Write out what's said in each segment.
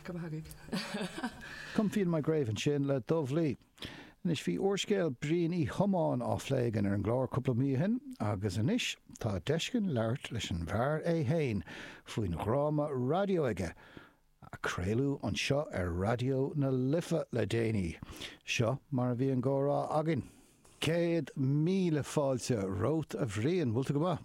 Go mba hagaidh. Come feel my grave ansin le Dubh Lí. Anois bhí úrscéal Bhriain Uí Thiomáin á phlé again ar an gclár cúpla mí ó shin agus anois tá deis againn labhairt leis an bhfear é fhéin faoin dhráma raidió aige a craoladh anseo ar Raidió na Life le déanaí. Seo mar a bhí an gcomhrá againn. Céad míle fáilte romhat a Bhriain, bhfuil tú go maith?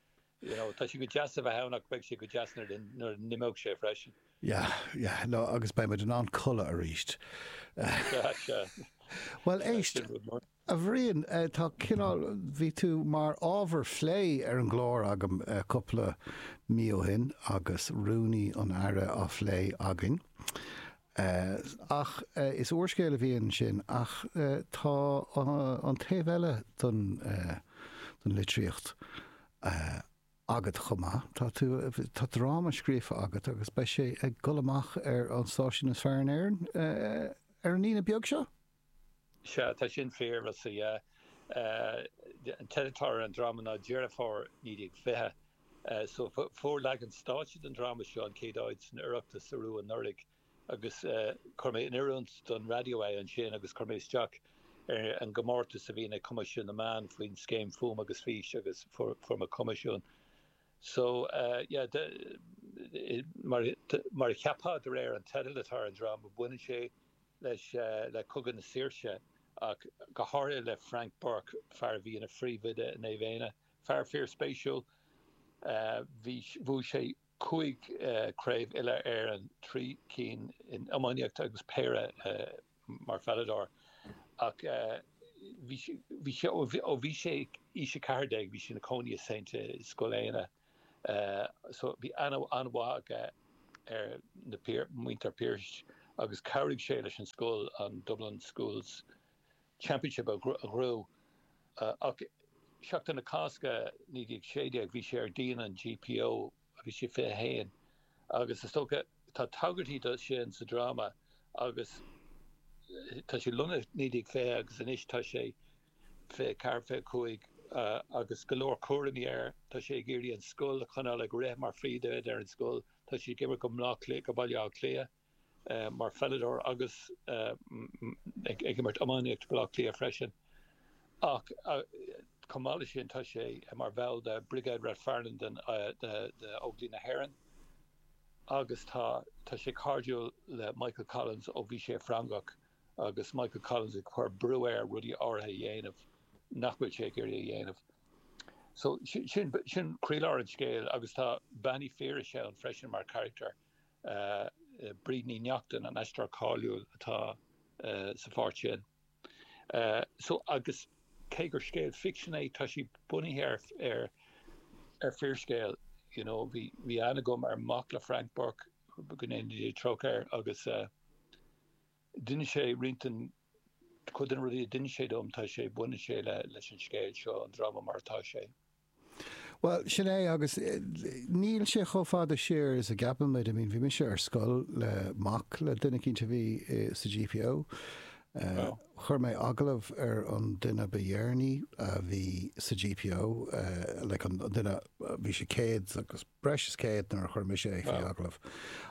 You know, tá sé go deas a bheith ann ach beidh sé go deas nuair a n-imeoidh sé freisin. Yeah, yeah, no, agus beidh muid in ann codladh aríst. Sea, sea. Bhuel, éist, a Bhriain, tá cineál, bhí tú mar ábhar plé ar an gclár agam cúpla mí ó shin agus Rúnaí an Aire á phlé againn. Sea, ach is úrscéal a bhí ansin, ach tá an taobh eile den litríocht agat chomh maith. Tá tú, tá dráma scríofa agat agus beidh sé ag dul amach ar an stáisiún is fearr in Éirinn ar an Aoine beag seo. Sea, tá sin fíor, sea. An teideal atá ar an dráma ná Deireadh Fómhair 1920. Fuair leagan stáitse den dráma seo an chéad áit san Oireachtas arú anuraidh agus chuir mé in oiriúint don raidió é ansin agus chuir mé isteach ar an gcomórtas a bhíonn ag Coimisiún na Meán faoin scéim Fuaim agus Fís agus fuair mé coimisiún. So, yeah, mar a cheapfá de réir an teidil atá ar an dráma, baineann sé. leis le Cogadh na Saoirse ach go háirithe le Frank Burke, fear a bhí ina phríomhoide i Naomh Éanna. Fear fíorspéisiúil. Bhuaigh sé cúig chraobh Uile-Éireann, trí cinn in iománaíocht agus péire mar pheileadóir. Ach bhí sé, ó bhí sé aois 14, bhí sé ina chónaí i St. i Scoil Éanna. so bhí aithne an-mhaith aige ar mhuintir Phiarais agus chabhraigh sé leis an scoil an Dublin Schools Championship a ghnóthú. Ach Seachtain na Cásca 1916 bhí sé ar dhíon an GPO bhí sé 21 agus is dócha tá tagairtí do sin sa dráma agus tá sé lonnaithe 1920 agus anois tá sé 24, 25 agus go leor cúraimí air. Tá sé ag iarraidh an scoil a choinneáil ag rith mar phríomhoide ar an scoil. Tá sé ag imirt do, do Baile Átha Cliath mar pheileadóir agus ag imirt iománaíocht do Baile Átha Cliath freisin. Ach chomh maith leis sin tá sé mar bhall de Brigade Ráth Fearnáin den Óglaigh na hÉireann agus tá sé cairdiúil le Michael Collins ó bhí sé i Frongoch. agus Michael Collins ag cur brú air rudaí áirithe a dhéanamh nach bhfuil sé ag iarraidh a dhéanamh. So sin, sin croílár an scéil agus tá Bean Mhic Phiarais ann freisin mar charachtar, Bríd Ní Neachtain, an aisteoir cáiliúil atá sa pháirt sin. So agus cé gur scéal ficsin é tá sé bunaithe ar, ar, ar fíorscéal, you know, bhí, bhí aithne agam ar mhac le Frank Burke, go ndéana Dia trócaire air, agus eh. D'inis sé roinnt den, cuid de na rudaí a d'inis sé dom, tá sé, baineann sé le, leis an scéal seo, an dráma mar atá sé. Bhuel, sin é agus níl sé chomh fada siar is a gceapann muid, I mean, bhí mise ar scoil le, mac le duine eicínt a bhí i, sa GPO. Oh. Chuir mé agallamh ar an duine ba dheireanaí a bhí sa GPO, like an duine, bhí sé céad agus breis is céad nuair a chuir mise é faoi agallamh.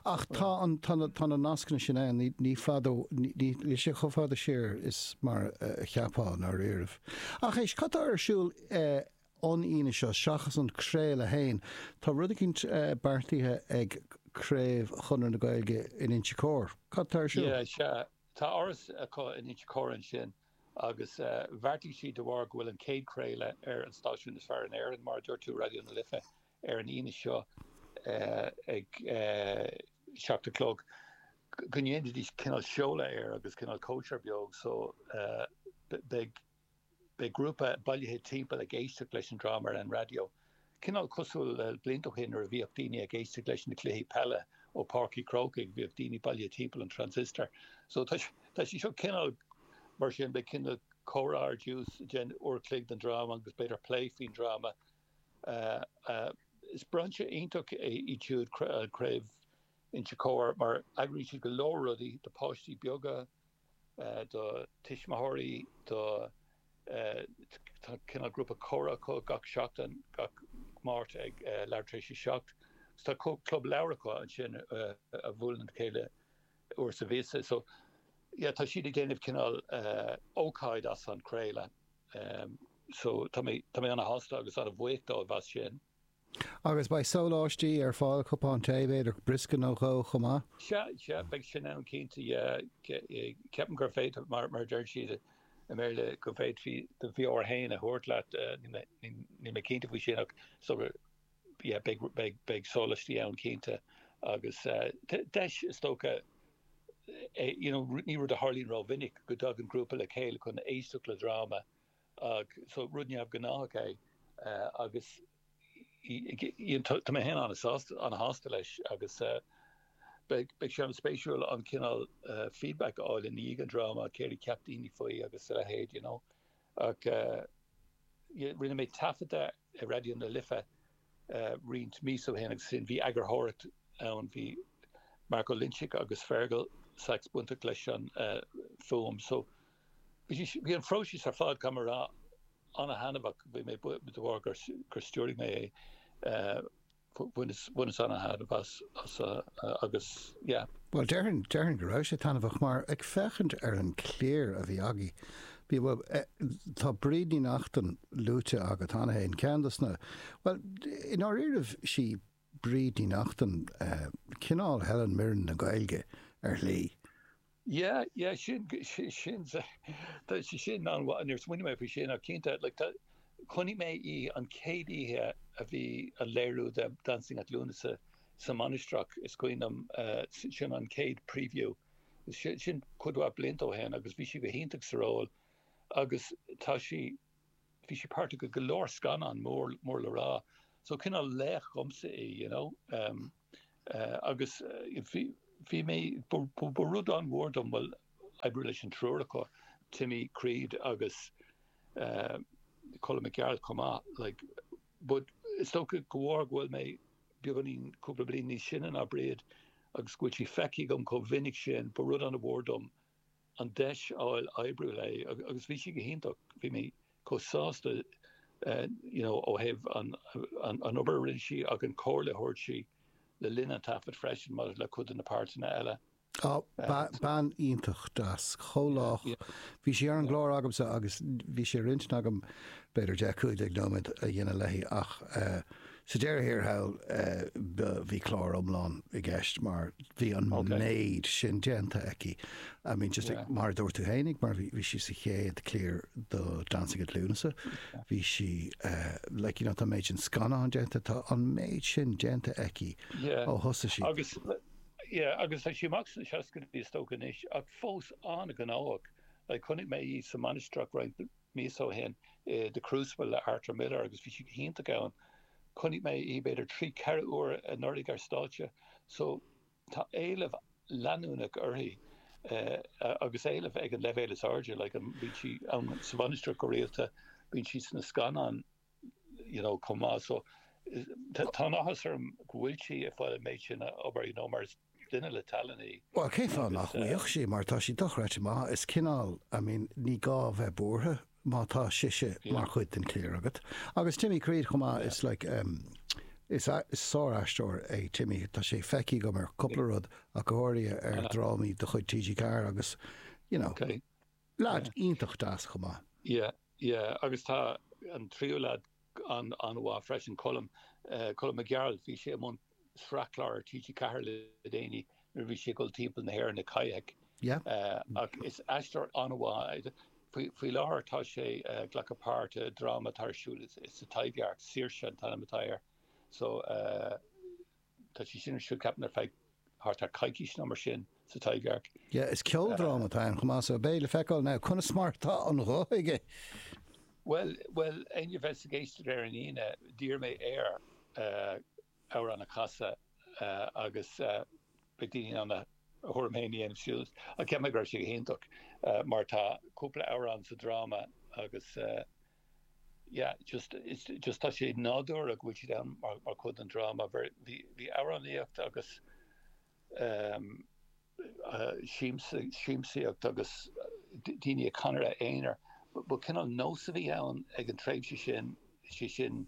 Ach tá an, tá na, tá na nascanna sin ann, ní, ní fadó, ní, ní, níl sé chomh fada siar is mar a cheapfá in dáiríribh. Ach éist, cad tá ar siúl eh an Aoine seo seachas an craoladh fhéin, tá rud eicínt eh beartaithe ag craobh Chonradh na Gaeilge in Inse Cór, cad tá ar siúl? Yeah, sea, tá áras acu in Inse Cór ansin. Agus bheartaigh siad, de bharr go bhfuil an chéad chraoladh ar an stáisiún is fearr in Éirinn, mar a dúirt tú, Raidió na Life, ar an Aoine seo ag seacht a chlog, go ndéanfaidís cineál seoladh air agus cineál cóisir bheag. So beidh grúpa bailithe timpeall ag éisteacht leis an dráma ar an raidió. Cineál cosúil le blianta ó shin nuair a bhíodh daoine ag éisteacht leis na cluichí peile ó Páirc an Chrócaigh, bhíodh daoine bailithe timpeall an transistor. So tá sé seo cineál mar sin, beidh cineál comhrá ar dtús, then uair an chloig den dráma agus b'fhéidir plé faoin dráma. Is brainse iontach é iad siúd, Craobh Inse Chóir, mar eagraíonn siad go leor rudaí do páistí beaga, do tuismitheoirí, do, tá cineál grúpa comhrá acu gach seachtain, gach Máirt ag leathuair tar éis a seacht, agus tá club leabhar acu ansin a bhuaileann le chéile uair sa mhí. So, yeah, tá siad ag déanamh cineál ócáid as an craoladh. So, tá mé ana-shásta agus ana-bhuíoch dóibh as sin. Agus beidh sóláistí ar fáil, cupán tae b'fhéidir, briosca nó dhó chomh maith. Sea, sea, beidh sin ann cinnte. Ceapaim gur féidir, mar a deireann siad i mBéarla, go bhféadfaí do bheoir fhéin a thabhairt leat. Níl mé cinnte faoi sin ach beidh sóláistí ann cinnte agus deis is dócha, you know, ní rud a tharlaíonn rómhinic go dtagann grúpa le chéile chun éisteacht le dráma. So rud neamh-ghnáthach é agus tá mé féin an-shásta leis agus beidh sé an-spéisiúil an cineál feedback a fháil i ndiaidh an dráma, céard a cheap daoine faoi agus a leithéid you know. Ach rinne mé taifeadadh i Raidió na Life roinnt míosa ó shin agus ansin bhí eagarthóireacht ann, bhí Mark Ó Loinsigh agus Fergal Sachs bainteach leis an fuaim so, Bhí an phróiseas ar fad, caithfidh mé a rá, an-thaitneamhach. Bhí mé, de bharr gur stiúraigh mé é. Bhaineas an-thaitneamh as agus yeah. Bhuel, déarfainn, déarfainn go raibh sé taitneamhach mar, ag féachaint ar an gcliar a bhí againn, bhí, bhuel, tá Bríd Ní Neachtain luaite agat cheana féin, ceann dos na, bhuel, i ndáiríribh, sí, Bríd Ní Neachtain, Cineál Helen Mirren na Gaeilge, ar shlí. Yeah, yeah, sin, sin, tá sí sin an-mhaith, níor smaoinigh mé faoi sin ach cinnte, like, tá, chonaic mé í an chéad oíche a bhí an léiriú de Dancing at Lughnasa sa Mainistreach, is cuimhin liom, sin an chéad preview, sin cuid mhaith blianta ó shin agus bhí sí go hiontach sa ról agus tá sí, bhí sí páirteach i go leor scannán mór, mór le rá, so cineál laoch dhomsa í, you know. Em, eh, agus bhí, bhí mé, ba, ba rud an-mhór dom, bhuel, oibriú leis an triúr acu, Timmy Creed agus, eh, Colm Mac Gearailt chomh maith, like, but is dócha go bhfuair, go bhfuil mé beagáinín, cúpla bliain níos sine ná Bríd agus go bhfuil sí feicthe agam chomh mhinic sin, ba rud an-mhór dom an deis a fháil oibriú léi agus bhí sí go hiontach, bhí mé chomh sásta you know ó thaobh an obair a rinne sí ach an comhairle a thabharfadh sí le linn an taifead freisin maidir le cuid de na páirteanna eile. Á, bean iontach deas, chomh lách, bhí sí ar an gclár agamsa agus bhí sé ar intinn agam b'fhéidir deich, cúig déag nóiméad a dhéanamh léi ach eh, Sa deireadh thiar thall bhí clár iomlán i gceist mar bhí an méid sin déanta aici. I mean just like mar a dúirt tú féin mar bhí sí sa chéad cliar do Dancing at Lughnasa bhí sí like you know tá an méid sin scannán déanta tá an méid sin déanta aici ó thosaigh sí. Agus yeah agus tá sí isteach sna seascaidí is dócha anois ach fós an-ghnóthach like chonaic mé í sa mainistreach roinnt míosa ó shin i The Crucible le Arthur Miller agus bhí sí go hiontach ann. Chonaic mé í b'fhéidir trí, ceithre uair anuraidh ar stáitse so tá éileamh leanúnach uirthi agus éileamh ag an leibhéal is airde, like bíonn sí ann sa Mhainistreach go rialta, bíonn sí sna scannáin. you know, chomh maith. So, tá an-áthas orm go bhfuil sí ag fáil an méid sin obair, you know, mar is duine le tallann í. Bhuel, cén fáth nach mbeadh sí mar tá sí dochreidte maith. Is cineál, I mean, ní gá a bheith buartha má tá sise mar chuid den chliar agat. Agus Timmy Creed chomh maith, is like, em, is sár-aisteoir é Timmy, tá sé feicthe agam ar cúpla rud ach go háirithe ar dhrámaí de chuid TG4 agus, you know, Leaid iontach deas chomh maith. Yeah, yeah agus tá an tríú lead an-mhaith freisin, Colm, Colm Mac Gearailt. Bhí sé i mbun sraithchlár ar TG4 le déanaí nuair a bhí sé ag dul timpeall na hÉireann i kayak. Yeah. Ach is aisteoir an-mhaith é. Faoi láthair tá sé ag glacadh páirt i dráma atá ar siúl sa Taibhdhearc, Saoirse an t-ainm atá air. So eh. Tá sé sin ar siúl ceapaim ar feadh thart ar choicís nó mar sin sa Taibhdhearc. Yeah, is ceoldráma atá ann chomh maith so beidh le feiceáil now conas mar atá an ghuth aige. Bhuel, bhuel, éinne a bheas ag éisteacht ar an Aoine, d'iarr mé air amhrán a chasadh agus beidh daoine in ann a thuairim féin a dhéanamh siúd ach ceapaim go raibh sé go hiontach mar tá cúpla amhrán sa dráma agus Yeah just just tá sé nádúrtha go bhfuil siad ann mar mar chuid den dráma. Bhí bhí bhí amhránaíocht agus ehm siamsa siamsaíocht agus daoine ag canadh aonair ba cineál nós a bhí ann ag an tréimhse sin sé sin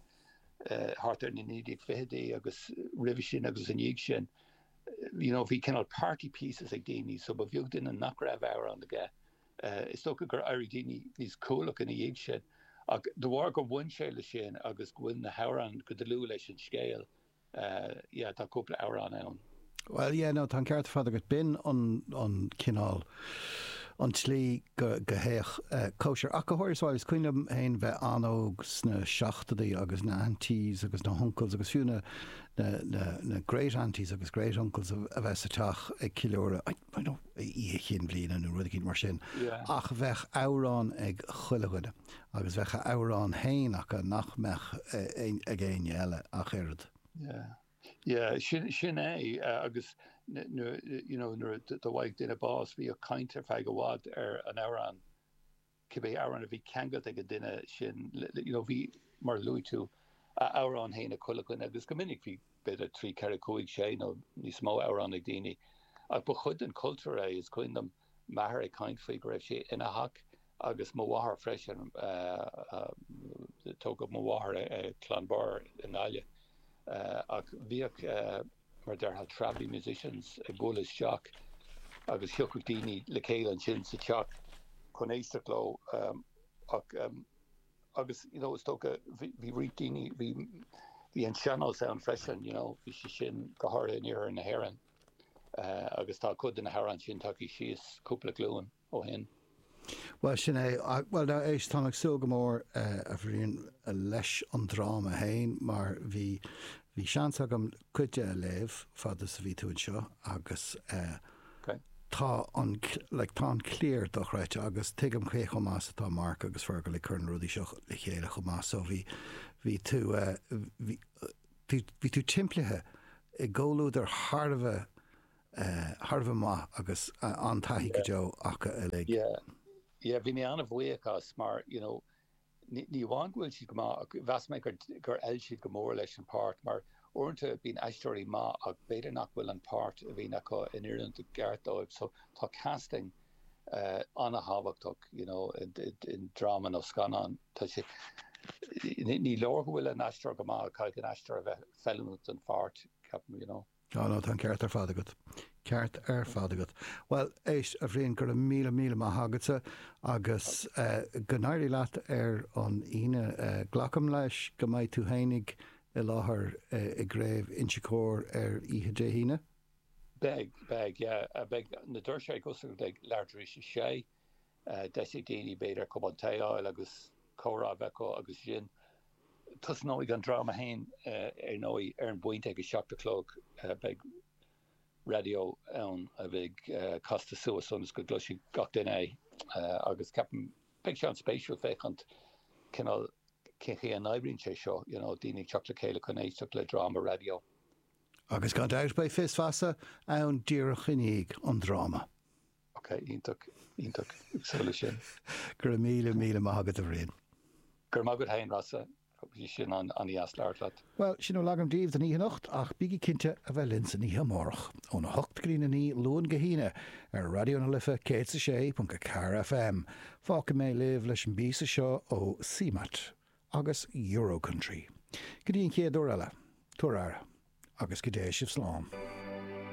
eh thart ar na naoi déag ficheadaí agus roimhe sin agus i ndiaidh sin you know bhí cineál party pieces ag daoine so ba bheag duine nach raibh amhrán aige. Is dócha gur éirigh daoine níos cúthalach ina dhiaidh sin. Ach de bharr gur bhain sé leis sin agus go bhfuil na hamhráin go dlúth leis an scéal, yeah, tá cúpla amhrán ann. Bhuel, yeah, no, tá an ceart ar fad agat. B'in an cineál, an tslí go dtéadh cóisir. Ach go háirithe, bhuel, is cuimhin liom féin bheith an-óg sna seachtóidí agus na aunties agus na huncles agus fiú na great-aunties agus great-uncles a bheith sa teach ag ceiliúradh, you know, oíche chinn bhliana nó rud eicínt mar sin. Ach bheadh amhrán ag chuile dhuine agus bheadh a amhrán fhéin acu nach mbeadh ag éinne eile ach oiread. Yeah, yeah, sin é agus nuair, you know, nuair a bhfaigheadh duine bás bhíodh caint ar feadh i bhfad ar an amhrán. cibé amhrán a bhí ceangailt ag an duine sin, you know, bhí, mar a luaigh tú, a amhrán fhéin ag chuile dhuine agus go minic bhí b'fhéidir trí, ceithre, cúig, sé nó níos mó amhrán ag daoine. Ach ba chuid den chultúr é, is cuimhin liom m'athair ag caint faoi go raibh sé ina theach agus mo mháthair freisin, tógadh mo mháthair sa Chloinn Bhairr i nGaillimh, Ach bhíodh, mar a déarfá, travelling musicians ag bualadh isteach agus thiocfadh daoine le chéile ansin sa teach chun éisteacht leo. Agus, you know, is dócha, go mbíodh roinnt daoine, bhí, bhí an sean-nós ann freisin, you know, bhí sé sin go háirithe in iarthar na hÉireann. Agus tá cuid de na hamhráin sin tagtha síos cúpla glúin. ó shin. Bhuel, sin é. Bhuel, now, éist, táim ag súil go mór, a Bhriain, leis an dráma fhéin, mar bhí, bhí seans agam cuid de a léamh, fad is a bhí tú anseo, agus eh. OK. tá an, like, tá an chliar dochreidte, agus tuigim cé chomh maith is atá Mark agus Fergal ag cur na rudaí seo le chéile chomh maith, so bhí, bhí tú eh, bhí, bhí tú timpeallaithe i gcomhluadar thar a bheith, thar a bheith maith agus an-taithí go deo acu uilig. Yeah, yeah, bhí mé an-bhuíoch as mar, you know, ní amháin go bhfuil siad go maith ach mheas mé gur fheil siad go mór leis an páirt mar uaireanta bíonn aisteoirí maith ach b'fhéidir nach bhfuil an páirt a bhíonn acu in oiriúint i gceart dóibh so tá casting an-thábhachtach, you know, i ndráma nó scannán. Tá sé, ní leor go bhfuil an aisteoir go maith, caithfidh an aisteoir a bheith feiliúnach don pháirt, ceapaim, you know. Á, no, tá an ceart ar fad agat. Ceart ar fad agat. Bhuel, éist, a Bhriain, go raibh míle míle maith agatsa agus go n-éirí leat ar an Aoine. Glacaim leis go mbeidh tú fhéineach i láthair i gCraobh Inse Chór ar oíche Dé hAoine? Beidh, beidh, yeah. Beidh na doirse ag oscailt ag leathuair tar éis a sé. Deis ag daoine, b'fhéidir, cupán tae a fháil agus comhrá a bheith acu agus ansin tosnóidh an dráma féin ar ndóigh. Ar an bpointe ag a seacht a chlog beidh raidió ann a bheidh casta suas ionas go gcloisfidh gach duine é agus ceapaim beidh sé an-spéisiúil féachaint cineál cén chaoi a n-oibríonn sé seo, you know, daoine ag teacht le chéile chun éisteacht le dráma raidió. Agus gan dabht beidh 'Fios Feasa' ann díreach i ndiaidh an dráma. Ok, iontach, iontach, ag súil leis sin. Go raibh míle, míle maith agat, a Bhriain. Go raibh maith agat fhéin, Rossa, bhí sé an-deas labhairt leat. Bhuel, sin a bhí agam daoibh don oíche anocht, ach bígí cinnte a bheith linn san oíche amárach, óna hocht go dtí'n a naoi, Luan go hAoine, ar Raidió na Life 106.4 FM. Fágfaidh mé sibh leis an bpíosa seo ó CMAT agus Euro-Country. Go dtí an chéad uair eile, tabhair aire, agus go dté sibh slán.